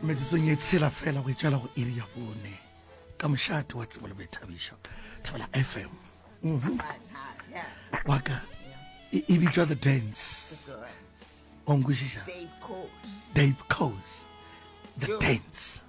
metsetsong e tshela fela go etsela go iri ya bone ka mošate wa tsebo le boithabišo thebela fm mhm. waka e, e bitšwa the dance wa nkwešiša dave cos the dance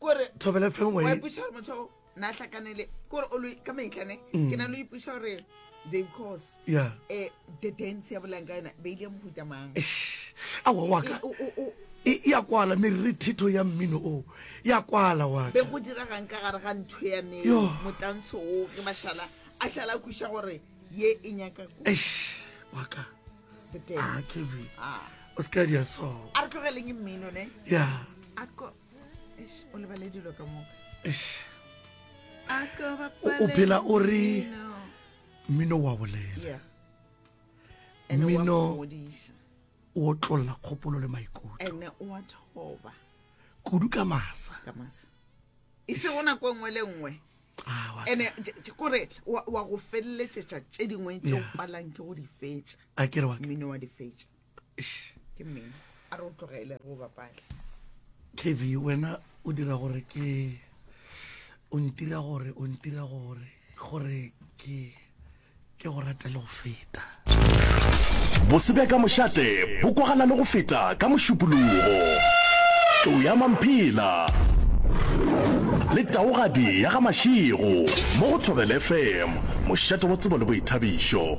kore thobela fe ngwe ipuša gore motho o na hlakanele kore o lo ka maitlane ke na lo ipuša gore dave cos ya um the dance ya bolang ka yona ba ile mohuta mang a wa waka O- o- o- e e ya kwala merre thetho ya mmino o ya kwala wa be go diragang ka gare ga ntho ya ne Yo. motlantsho o ge ba šala a šala a kuša gore ye e nyaka ko eish waka ah, kevin ah. o se ka dia so a re tlogeleng mmino ne ya o lebale dilo ka moka o phela o re mmino wa bolela mmino o tlolla kgopolo le maikutlo kudu ka masa e se go nako nngwe le nngwe ene kore wa go feleletšetša tše dingwe tše o palang ke go di fetša mmino wa di fetša ke mmino a re o tlogele go bapale kv wena o dira gore ke o ntira gore o ntira gore gore ke Ke go rate le go feta. Bose bja ka mošate bo kwagala le go feta ka mošupologo. Tlou ya Mamphela le taogadi ya ga Mašego mo go Thobela FM, mošate wa tsebo le boithabišo.